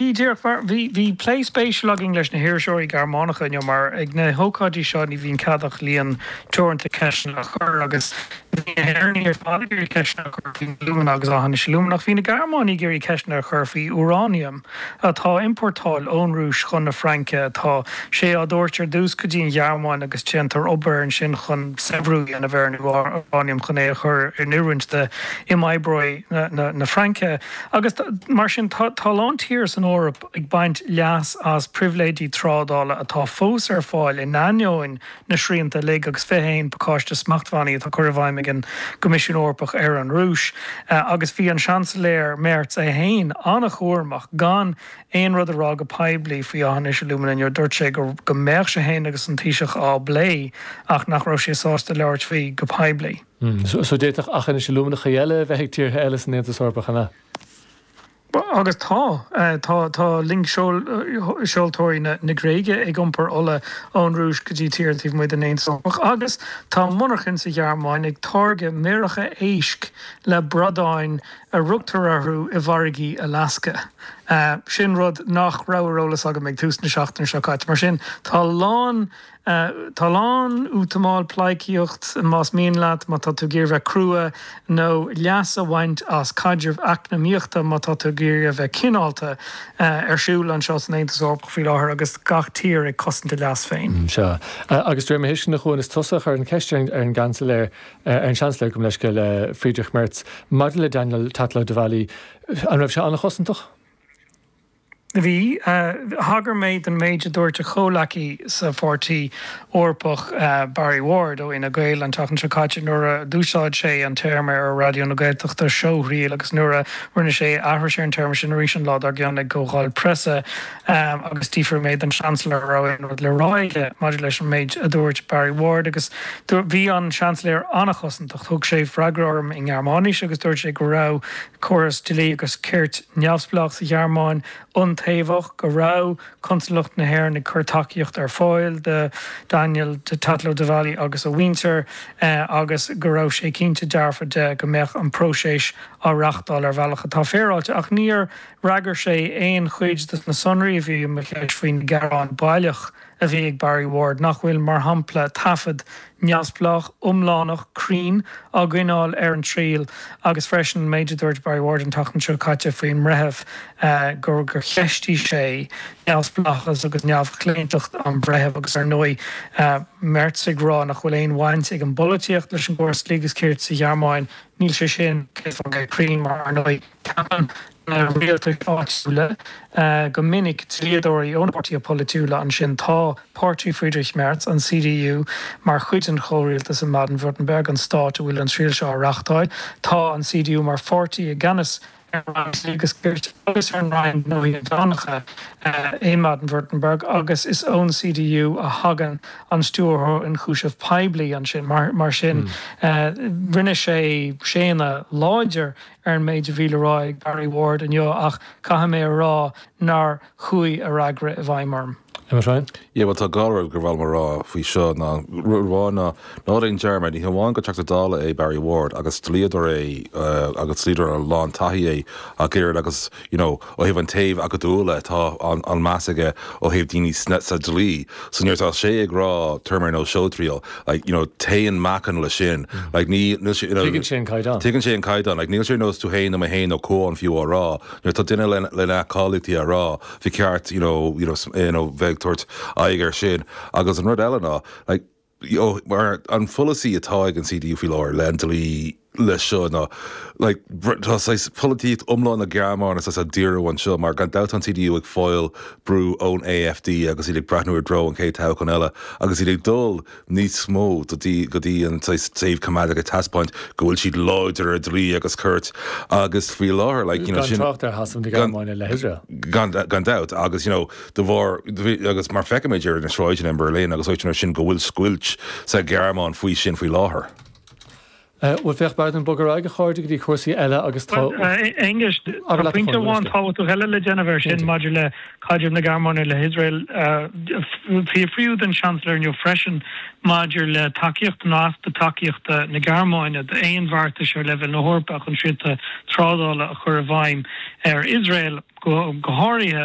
Ní, díreach mar, bhí, bhí plé spéisiúil againn leis na hiriseoirí Gearmánacha inniu mar ag na hócáidí seo ní bhíonn cead ach líon teoranta ceisteanna a chur agus bhí na hÉireannaigh ar fad ag iarraidh ceisteanna a chur faoi alúmana agus Aughinish Alumina ach bhí na Gearmánaigh ag iarraidh ceisteanna a chur faoi úráiniam atá á iompórtáil ón Rúis chun na Fraince. Tá sé á dtabhairt ar dtús go dtí an Ghearmáin agus déantar obair ansin chun saibhriú a dhéanamh ar an úráiniam chun é a chur in oiriúint d'imoibreoirí na Fraince. Agus mar sin, tá a lán tír san Eoraip ag baint leas as pribhléidí trádála atá fós ar fáil in ainneoin na srianta uilig agus 21 pacáiste smachtbhannaí atá curtha i bhfeidhm ag an gCoimisiún Eorpach ar an Rúis agus bhí an Seansailéir Merz é féin an-chúramach gan aon rud a rá go poiblí faoi Aughinish Alumina inniu. Dúirt sé go mbeadh sé féin agus an Taoiseach á bplé ach nach raibh sé sásta labhairt faoi go poiblí. So d'fhéadfadh Aughinish Aluminacha eile a bheith ag tíortha eile san Aontas Eorpach, an ea? Agus tá. Tá loingseoltóirí na Gréige ag iompar ola ón Rúis go dtí tíortha taobh amuigh den Aontas Eorpach agus tá monarchain sa Ghearmáin ag táirgeadh méaracha éisc le bradáin a rugtar orthu i bhfarraigí Alasca. Sin rud nach raibh ar eolas agam ag tús na seachtaine seo caite. Mar sin, tá a lán Tá a lán útamáil, pleidhcíocht, más mian leat, má tá tú ag iarraidh bheith crua, nó leas a bhaint as caidreamh eacnamaíochta, má tá tú ag iarraidh a bheith cineálta, ar siúl anseo san Aontas Eorpach faoi láthair agus gach tír ag cosaint a leas féin. Sea. Agus de réir mo thuisceana, a Chuain, is tusa a chuir an cheist ar an gCeansailéir, ar an Seansailéir, gabh mo leithscéal, Friedrich Merz, maidir le Daniel Tatlow-Devally. An raibh sé an-chosantach? Bhí. Thagair mé don méid a dúirt a chomhleacaí sa Pháirtí Eorpach, Barry Ward ó Fhine Gael, an tseachtain seo caite nuair a d'úsáid sé an téarma ar Raidió na Gaeltachta, seóthriail, agus nuair a rinne sé aithris ar an téarma sin arís an lá dár gcionn ag Comhdháil Preasa. Agus d'fhiafraigh mé den Seansailéir an raibh aon rud le rá aige maidir leis an méid a dúirt Barry Ward agus bhí an Seansailéir an-chosantach. Thug sé freagra orm i nGearmáinis agus dúirt sé go raibh. córas dlí agus cirt neamhspleách sa Ghearmáin iontaobhach, go raibh Consalacht na hÉireann ag cur tacaíocht ar fáil do Daniel Tatlow-Devally agus a mhuintir agus go raibh sé cinnte dearfa de go mbeadh an próiseas á reáchtáil ar bhealach atá féaráilte. Ach níor fhreagair sé aon chuid de na sonraí a bhí i mo cheist faoin ghearán baileach. a bhí ag Barry Ward, nach bhfuil, mar shampla, taifead neamhspleách, iomlánach, cruinn á gcoinneáil ar an triail agus freisin an méid a dúirt Barry Ward an tseachtain seo caite faoin mbreitheamh, gur cheistigh sé neamhspleáchas agus neamhchlaontacht an bhreithimh agus, ar ndóigh, Merz ag rá nach bhfuil aon bhaint ag an bpolaitíocht leis an gcóras dlí agus cirt sa Ghearmáin. Níl sé sin, céad faoin gcéad cruinn mar, ar ndóigh. Ceapann na rialtais áitiúla go minic dlíodóirí ó na páirtithe polaitiúla ansin. Tá páirtí Friedrich Merz, an CDU, mar chuid den chomhrialtas in mBaden-Württemberg, an stát a bhfuil an triail seo á reáchtáil. Tá an CDU mar pháirtí i gceannas ar an Roinn Dlí agus Cirt agus ar an Roinn Gnóthaí Inmheánacha i mBaden-Württemberg agus is ón CDU a thagann an Stiúrthóir Ionchúiseamh Poiblí ansin. Mar sin, rinne sé séanadh láidir ar an méid a bhí le rá ag Barry Ward inniu ach caithfidh mé a rá nár chuaigh a fhreagra i bhfeidhm orm. Emma Ryan. Yeah, bhuel tá dhá rud gur mhaith liom a rá faoi seo ná rud amháin ná ná déan dearmad, ní hamháin gur Teachta Dála é Barry Ward agus dlíodóir é agus dlíodóir a lán taithí é ach oiread agus, you know, Ó thaobh an taobh acadúla atá an meas aige ó thaobh daoine sa dlí. So nuair atá sé ag rá turmoil nó show trial like you know téann meáchan leis sin like ní níl sé you know Tuigeann sé an caighdeán. tuigeann sé an caighdeán like níl sé ar nós tú féin nó mé féin nó Cuán fiú á rá nuair atá duine le le na cáilíochtaí á rá ba cheart you know you know you know bheith ag tabhairt aghaidh ar sin agus an rud eile ná like Mar an pholasaí atá ag an CDU faoi láthair le an dlí leis seo ná like tá saghas polaitíocht iomlán na Gearmáine saghas á díriú anseo mar gan dabht tá an CDU ag fáil brú ón AfD agus iad ag breathnú i dtreo an chéad toghchán eile agus iad ag dul níos mó do dtí go dtí an saghas taobh coimeádach ag taispeáint go bhfuil siad láidir ar dlí agus cirt agus faoi láthair like you know gan dabht agus you know de bharr, agus mar feicimid ar na sráideanna i mBerlin agus áiteanna mar sin, go bhfuil scoilt sa Ghearmáin faoi sin faoi láthair. Bhuel, féach, beam ag bogadh ar aghaidh, a chairde, go dtí cúrsaí eile agus tá. Bhuel, a Aonghus, tá pointe amháin tábhachtach eile le déanamh air sin maidir le caidreamh na Gearmáine le hIosrael. Fiafraíodh den Seansailéir inniu freisin maidir le tacaíocht nó easpa tacaíochta na Gearmáine d'aon bheartais ar leibhéal na hEorpa chun srianta trádála a chur i bhfeidhm ar Iosrael, go háirithe,